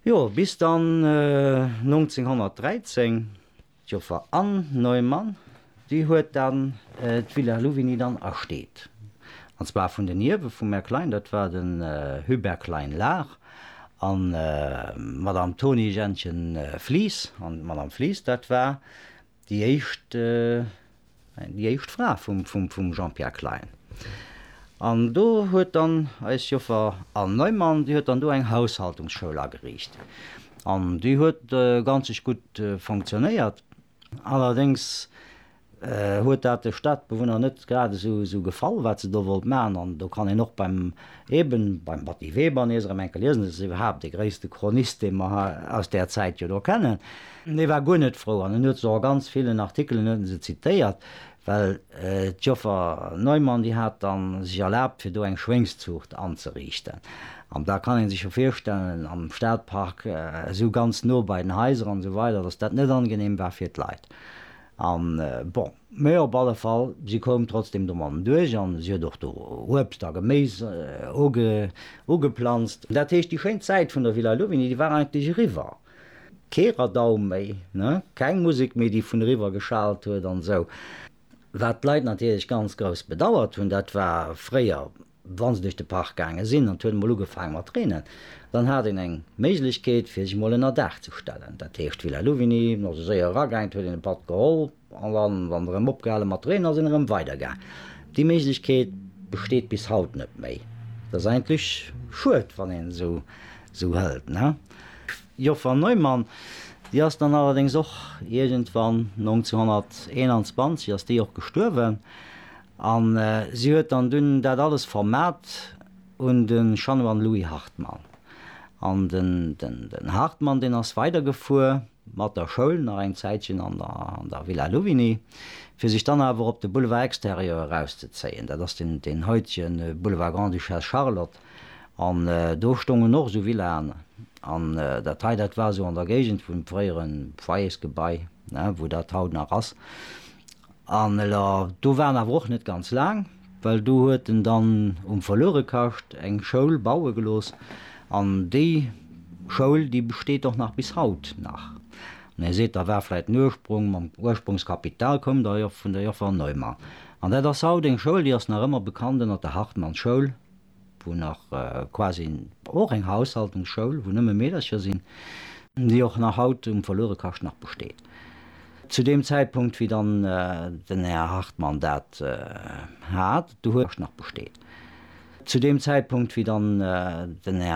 Jo, bis dann 1913 d'Joffer Anne Neumann, déi huet dann d'Villa Louvigny dann ersteet. An zwar vun den Ierwe vum Här Klein, dat war den Hubert Klein-Lahr an d'Madame Toni-Jeanchen Flies. An d'Madame Flies, dat war Déi éischt, déi éischt Fra vum Jean-Pierre Klein. An do huet dann eis Joffer Anne Neumann, déi huet dann do eng Haushaltungsschoul ageriicht. An déi huet ganzeg gutt fonctionnéiert. Allerdéngs huet dat de Stadbewunner net grad esou gefall, wat se do wollt maachen. An do kann een och beim, eben beim Batty Weber nees erëm enke liesen, dat ass iwwerhaapt dee gréisste Chronist, dee mer aus där Zäit jo do kennen. An hie war guer net frou an en huet se och a ganz villen Artikelen huet en se zitéiert, well d'Joffer Neumann, déi hat da sech erlaabt, fir do eng Schwéngszuucht anzeriichten. An da kann ee sech jo virstellen, am Stadpark, esou ganz no bei den Haiser an esou weider, datt dat net angenehm war fir d'Leit. An, bon, mä op alle Fall, si koum trotzdem domadden duerch an si huet och do Uebst a Geméis ugeplanzt. Dat heescht, déi schéin Zäit vun der Villa Louvigny, déi war eigentlech eriwwer. Kee Radau méi, ne? Keng Musek méi, déi vun eriwwer geschalt huet an esou. Wat d'Leit natierlech ganz grouss bedauert hunn, dat war fréier, wa se duerch de Park gaange sinn an et huet emol ugefaange mat reenen, dann hat een eng Méiglechkeet, fir sech emol ënnerdaach ze stellen. Dat heescht, d'Villa Louvigny, no sou séier eragaangen, et huet een e Patt geholl, An dann, wann se erëm opgehalen mat reenen, sinn erëm weider gaang. Déi Méiglechkeet besteet bis haut net méi. Dat ass eigentlech schued, wann een et esou hëlt, ne? D'Joffer Neumann, déi ass dann allerdéngs och iergendwann, 1921 ass déi och gestuerwen, a si huet dann dunn dat alles vermat un de Chanoine Louis Hartmann. An den Hartmann, deen ass weidergefuer. mat der Schoul nach eng Zäitchen an der Villa Louvigny, fir sech dann awer op de Boulevard Extérieur erauszezéien, dat ass deen haitege Boulevard Grande-Duchesse Charlotte, an do stoungen och esou Villaen, an dat hei, dat war esou an der Géigend vum fréiere Foyersgebai, wou dat haut nach ass, an do waren awer och net ganz laang. Well do huet en dann um Verluerekascht eng Schoul baue gelooss, an déi Schoul, déi besteet och nach bis haut nach. An Dir seet, da war vläit en Ursprung, mam Ursprungskapital koum der jo vun der Joffer Neumann. An dat ass haut eng Schoul, déi ass nach ëmmer bekannt ënner der Hartmannschoul, wou nach quasi och eng Haushaltungsschoul, wou nëmme Meedercher sinn, déi och nach haut um Verluerekascht nach besteet. Zu deem Zäitpunkt, wéi dann den Här Hartmann dat hat, do huet nach besteet. Zu deem Zäitpunkt, wéi dann den Här.